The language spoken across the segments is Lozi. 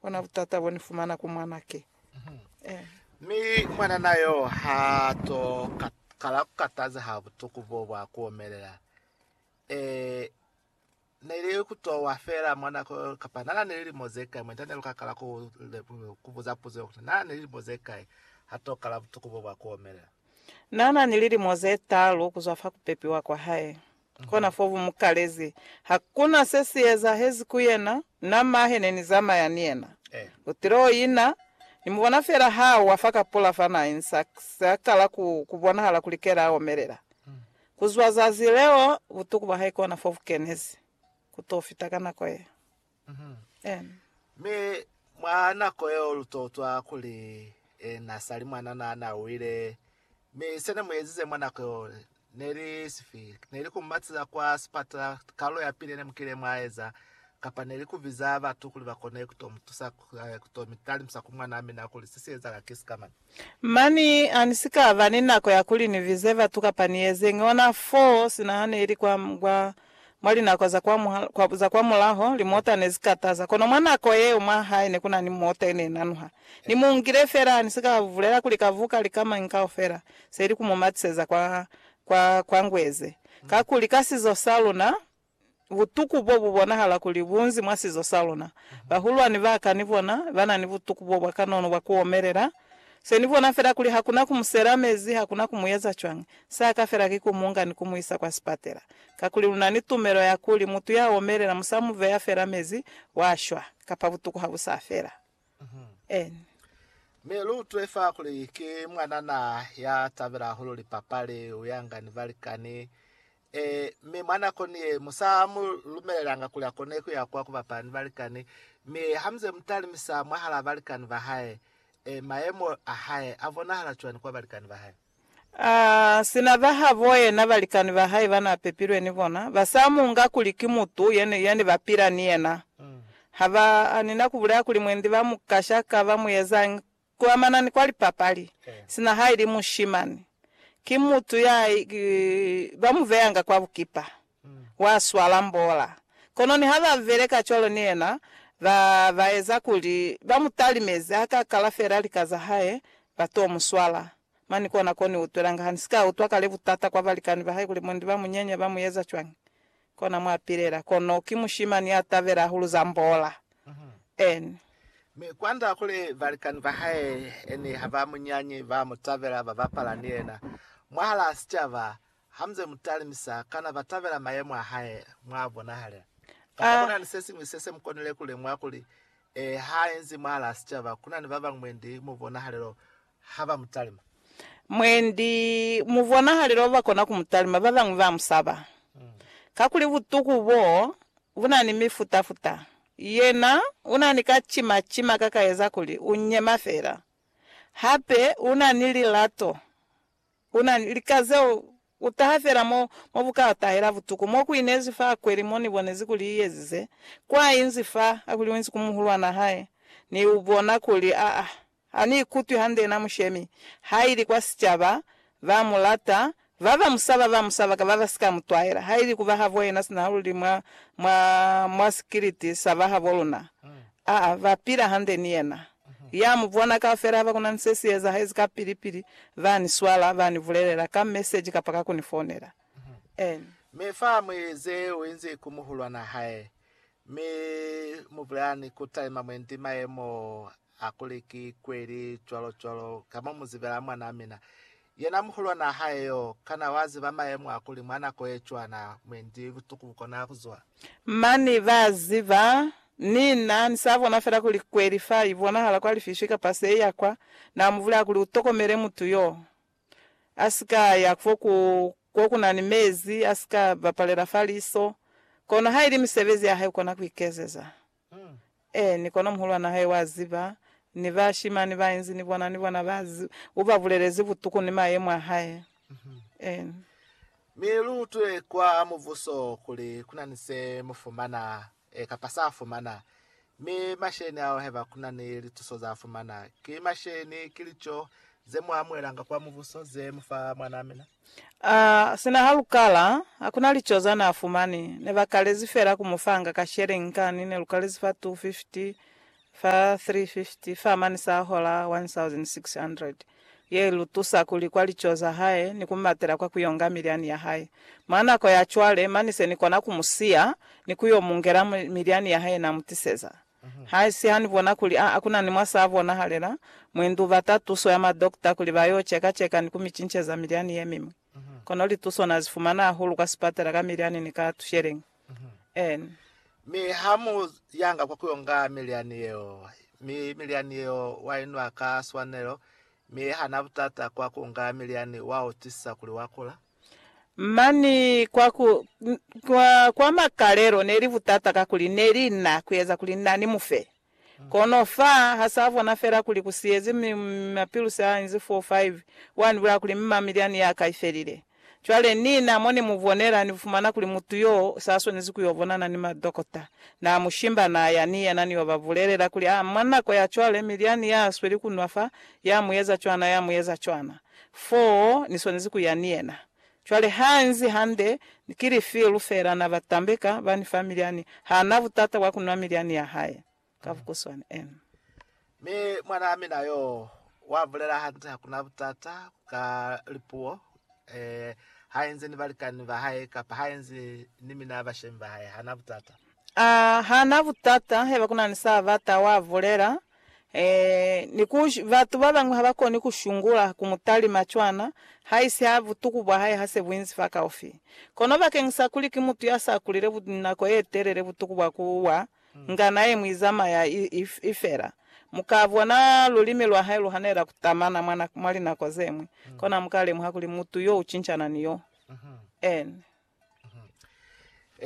Bona butata bo ni fumana ku mwanake. Eh. Mi mwanana yo ha to ka, kala ku kataza ha butuku bo bwa ku omelela. Eh, ne li ku to wa fela mwanako yo, kapa nana ni lilimo ze kai. Mwenta ne lu ka kala ku, ku buza puzo yo kuti, Nana ni lilimo ze kai ha to kala butuku bo bwa ku omelela? Nana ni lilimo ze talu kuzwa fa ku pepiwa kwa hae. Kona fo bu mu kalezi. Ha ku na se si ezahezi ku yena, na ma he ne ni zamaya ni yena. U tile o ina, ni mu bona fela ha a wa fa ka pula fa na insa, se a kala ku, ku bonahala kuli kele a omelela. Ku zwa zazi leo, butuku bwa hae kona fo bu kenezi. Ku to fita ka nako ye. Mi mwa nako yeo lu totwa kuli ena sali mwanana ana wile. Mi sene muezize mwa nako yeo neli sifi? Neli ku mumatiza kwa sipatala, kalulo ya pili yene mukile mwa eza, kapa neli ku biza batu kuli bakone kuto mutusa kuto mitalimisa ku mwanaa mina kuli sesi ezahala ki sikamana? Mani, ha ni si ka ba ni nako ya kuli ni bize batu kapa ni ezeñi ona fo sina ha ne li kwa, kwa, mwa linako za kwa, kwa, za kwa mulaho, limota ne zi kataza. Kono mwa nako yeo mwa hae ne ku na ni mota ye ne i nanuha. Ni mu ngile fela, ha ni si ka bulela kuli ka buka lika mañi kaufela, se ili ku mu matiseza kwa, kwa, kwa ngweze. Kakuli, ka sizo sa luna, butuku bo bu bonahala kuli bu nzi mwa sizo sa luna. Bahulwani ba ka ni bona ba na ni butuku bo bwa kanono bwa ku omelela. Se ni bona fela kuli ha ku na ku mu sela mezi, ha ku na ku mu eza cwañi, sa ka fela ki ku mu nga ni ku mu isa kwa sipatela. Kakuli lu na ni tumelo ya kuli mutu ya omelela mu sa mu beya fela mezi, wa shwa, kapa butuku ha bu sa fela. N. Mi lu utule fa kuli ki mwanana ya tabela hahulu lipapali, u yanga ni balikani, Ee, mi mwa nakoni ye, mu sa mu lumelelanga kuli a kone ku ya kwa ku bapala ni balikani. Mi ha muze mu talimisa mwahalaa balikani ba hae, ee, mayemo a hae a bonahala cwani kwa balikani ba hae? A sina ba habo yena, balikani ba hae ba n'a pepilwe ni bona, ba sa mu nga kuli ki mutu ye, ye ne ba pila ni yena. Ha ba ni na ku bulela kuli mwendi ba mu kasha ka ba mu ezañi Ku amana ni kwa lipapali, sina ha ili mushimani, ki mutu ya ba mu veyanga kwa bukipa, wa swala mbola. Kono niha ba beleka cwalo ni yena, ba ba eza kuli ba mu talimeze, ha ka kala fela lika za hae, ba to mu swala. Mani kona ko ni utwelanga ha ni si ka utwa kale butata kwa balikani ba hae kuli mundi ba mu nyenya, ba mu eza cwañi. Kona mwa pilela, kono ki mushimani ya tabela hahulu za mbola. N. Mi kwand'a kuli balikani ba hae ne ha ba mu nyanyi, ba mu tabela, ba bapala ni yena mwahal'a sicaba. Ha mu ze mu talimisa, kana ba tabela mayemo a hae mw'a bonahala? Kamba ku na ni se siñwi se se mu konile ku lemuha kuli, ee, ha enzi mwahal'a sicaba ku na ni ba bañwi mwendi mubonahalelo ha ba mu talima. Mwendi mu bonahalelo ba kona ku mu talima, ba bañwi ba mu saba. Kakuli butuku bo bu na ni mifuta-futa. Yena u na ni ka cima-cima ka ka eza kuli u nyema fela. Hape u na ni lilato. U na ni lika zeo u taha fela mo, mo bu ka tahela butuku. Mo ku inezi fa kweli mo ni bonezi kuli i ezize, kwa inzi fa, kakuli u inzi ku muhulwan'a hae, ni u bona kuli a, a Ha ni ikutwi hande na mushemi, ha ili kwa sicaba, ba mu lata, ba ba mu saba ba mu saba ka ba ba si ka mu twaela, ha ili ku ba habo yena sina luli mwa, mwa, mwa sikiliti sa ba habo luna. A ba pila hande ni yena. Ya mu bona kaufela haba ku na ni se si ezahezi ka pili pili, ba ni swala, ba ni bulelela, ka meseji kapa ka ku ni founela. Amen. Mi fa mwi ze u inzi ku muhulwana hae, mi mu bulelani ku talima mwendi mayemo Hakuli ki kweli cwalo-cwalo, ka mo mu zibela mwanaa mina. Yena muhulwanaa hae yo, kana wa ziba mayemo a kuli mwa nako ye cwana, mwendi butuku bu kona ku zwa? Mani, ba ziba. Ni na, ni sa bona fela kuli kweli fa i bonahala kwa lifiswi kapa se ya kwa. Na mu bulaya kuli, U tokomele mutu yo. A si ka ya kwo ku, kwo ku na ni mezi, a si ka bapalela fa liso. Kono ha ili misebezi ya hae, u kona ku ikezeza. Eeni, kono muhulwan'a hae wa ziba, ni bashimani ba inzi ni bona, ni bona ba ziba. U ba bulelezi butuku ni mayemo a hae. Eeni. Mi lu utwe kwa Mubuso kuli ku na ni se mu fumana, kapa s'a fumana. Mi masheni ao, haiba ku na ni lituso z'a fumana, ki masheni, ki lico ze mu amuhelanga kwa Mubuso, ze mu fa mwan'a mina. A, sina ha lu kala, hakuna lico za na fumani. Ne ba kalezi fela ku mu fanga ka shering kani, ne lu kalezi fa 250, fa 350, fa mani sa hola 1,600. Ye ilu tusa ku li kwa lico za hae ni ku matela kwa ku yo nga milyani ya hae. Mwa nako ya cwale, mani se ni kona ku mu siya ni ku yo mu ngela milyani ya hae na mu tiseza. Haisi ha ni bona kuli a kuna ni mwa sa bonahalela, mwe ndu bata tuso ya ma dokta kuli ba yo cheka cheka ni ku mi cinceza milyani ye miñwi. Kono lituso na zi fumana hahulu kwa sipatela ka milyani ni ka tusheleñi. N. Mi ha mu yanga kwa ku yo nga milyani yeo, mi milyani yeo wa i nwa ka swanelo, mi ha na butata kwa ku nga milyani wa utwisisa kuli wa kula. Mani kwa ku, kwa, kwa makalelo ne li butata kakuli ne li na kueza kuli na ni mufe. Kono fa ha sa bona fela kuli ku siyezi mi mapilusi a inzi 4, 5, wa ni bulaya kuli mma milyani ya ka i felile. Cwale nina mo ni mu bonela, ni fumana kuli mutu yo sa swanezi ku yo bonana ni madokota. Na mu shimba, na ya ni yena ni yo ba bulelela kuli, a, mwa nako ya cwale milyani ya sweli ku nwa fa, ya mu eza cwana, ya mu eza cwana. foo Ni swanezi ku ya ni yena. Cwale ha nzi hande, ki lifilu fela na ba tambeka ba ni fa milyani, ha na butata bwa ku nwa milyani ya hae. Ka bukuswani, en. Mi mwanaa mina yoo wa bulela hande, hakuna butata ka lipuo, eh, ha enzi ni balikani ba hae kapa ha enzi ni mina bashemi ba hae, hana butata. Ah, hana butata heba kuna ni sa bata, wa bulela. Ee, ni ku, batu babañwi habakoni kushungula ku mutalima cwana, haisi ha butuku bwahae hase buinzi fakaufi. Kono bakeñisa kuli ki mutu yasa kulile nako yetelele, butuku bwa ku wa, ngana ye mwi zamaya i, i, i fela. Muka bona lulimi lwahae luhanelela kutamana mwa, mwa linako zeñwi, kono hamuka lemuha kuli mutu yo ucincana ni yo. Ene.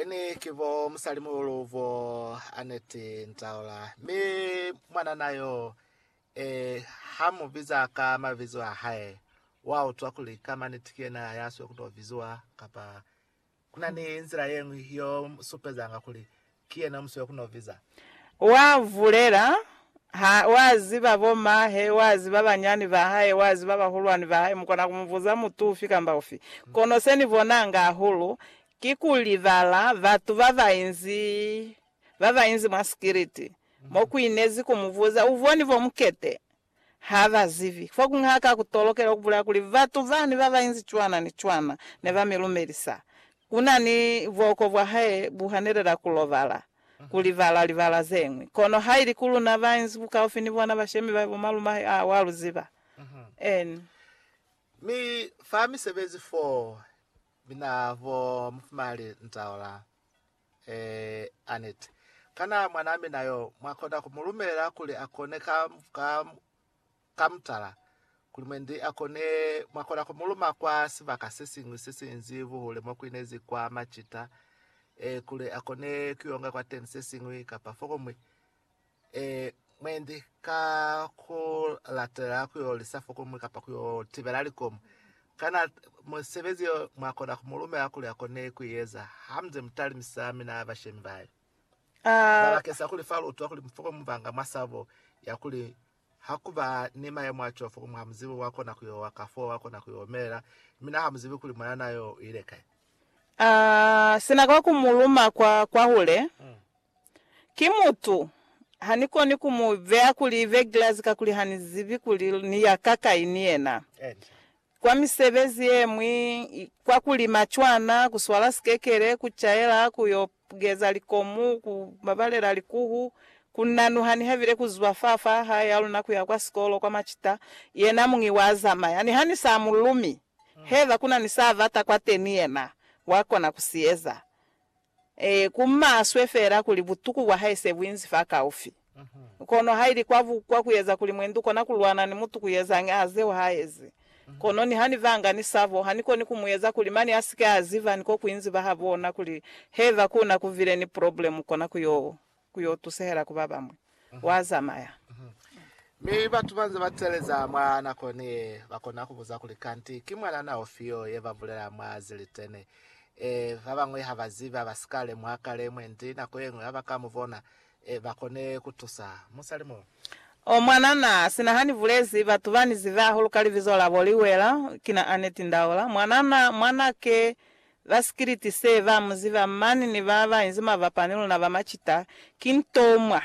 Ini ki bo musalimuhulu bo Annette Ntaola. Mi mwanana yo, eh, ha mu biza ka mabizo a hae, wa utwa kuli ka maniti ki yena ya sio ku to biziwa, kapa kuna ni nzila ye ñwi yo supezanga kuli Ki yena musi wa ku noviza. Wa vulela, ha, wa ziba bo mahe, wa ziba banyani ba hae, wa ziba bahulwani ba hae, mu kona ku mu buza mutu ufi kamba ufi. Kono se ni bonanga hahulu, ki ku libala batu ba ba inzi, ba ba inzi mwa sikiliti, mo ku inezi ku mu buza, U boni bo mukete? Ha ba zibi. Fa kuñwi ha ka ku tolokela ku bulaya kuli batu bani ba ba inzi cwana ni cwana ne ba mi lumelisa. Ku na ni buoko bwa hae bu hanelela ku lobala, ku libala libala ze ñwi. Kono ha ili ku luna ba inzi bukaufi ni bona bashemi ba bo malume hae, aa, wa lu ziba. N. Mi fa misebezi foo, mi na bo mufumali ntaula. Ee, Annette. Kana mwanaa mina yo, mwa kona ku mu lumela kuli a kone ka, ka, ka mutala? Kuli mwendi a kone, mwa kona ku mu luma kwa sibaka se siñwi se sinzi buhule mo ku inezi kwa macita, ee, kuli a kone ku yo nga kwateni se siñwi, kapa fokuñwi. e, mwendi ka ku latelela ku yo lisa fokomu kapa ku yo tibela likomu. Kana musebezi yo mwa kona ku mu lumela kuli a kone ku i eza ha mu nze mu talimisa mina bashemi ba hae? A. Ba bakesa kuli fa lu utwa kuli fokomu ba nga mwa sabo ya kuli ha ku ba ni mayemo a cwalo fokomu ha mu zibi wa kona ku yo wa, kafoo wa kona ku yo omelela, mina ha mu zibi kuli mwanana yo u ile kai. A. Sina kwa ku mu luma kwa kwahule. Ki mutu. Ha ni koni ku mu beya kuli Ivegilazi kakuli ha ni zibi kuli ni ya kakai ni yena. Kwa misebezi ye ñwi, kwa ku lima cwana, ku swala sikekele, ku caela, ku yo geza likomu, ku babalela likuhu, ku nanuha niha bile ku zwa fa fa hae ya luna ku ya kwa sikolo kwa macita, yena muñi wa zamaya. Niha ni sa mu lumi, haiba ku na ni sa bata kwateni yena wa kona ku si eza. Ee, ku maswe feela kuli butuku bwa hae se bu inzi fakaufi. Kono haili kwa bukwa ku eza kuli mwendi u kona ku lwana ni mutu ku yezañi a zeo ha ezi. Kono niha ni banga ni sabo, ha ni koni ku mu eza kuli mane a si ke a ziba ni ko ku inzi ba ha bona kuli heba ku na ku bile ni problemu kona ku yo ku yo tusehela ku ba bamwi. Wa zamaya. Mi batu banze ba teleza mwa nako ni ye, ba kona ku buza kuli, Kanti ki mwanana ufi yo ye ba bulela mwa zilitene? Ee, ba bañwi ha ba zibi, ha ba si ka lemuha kale, mwendi nako ye ñwi ha ba ka mu bona. Ee, ba kone ku tusa. Musali mo. Oh, mwanana, sina ha ni bulezi, batu ba ni zibi hahulu ka libizo labo, Liwela, kina Annette Ndaula. Mwanana, mwanake, Ba sikiliti se ba mu ziba mani ni ba ba inzi mabapa ni luna ba macita, ki ntomwa.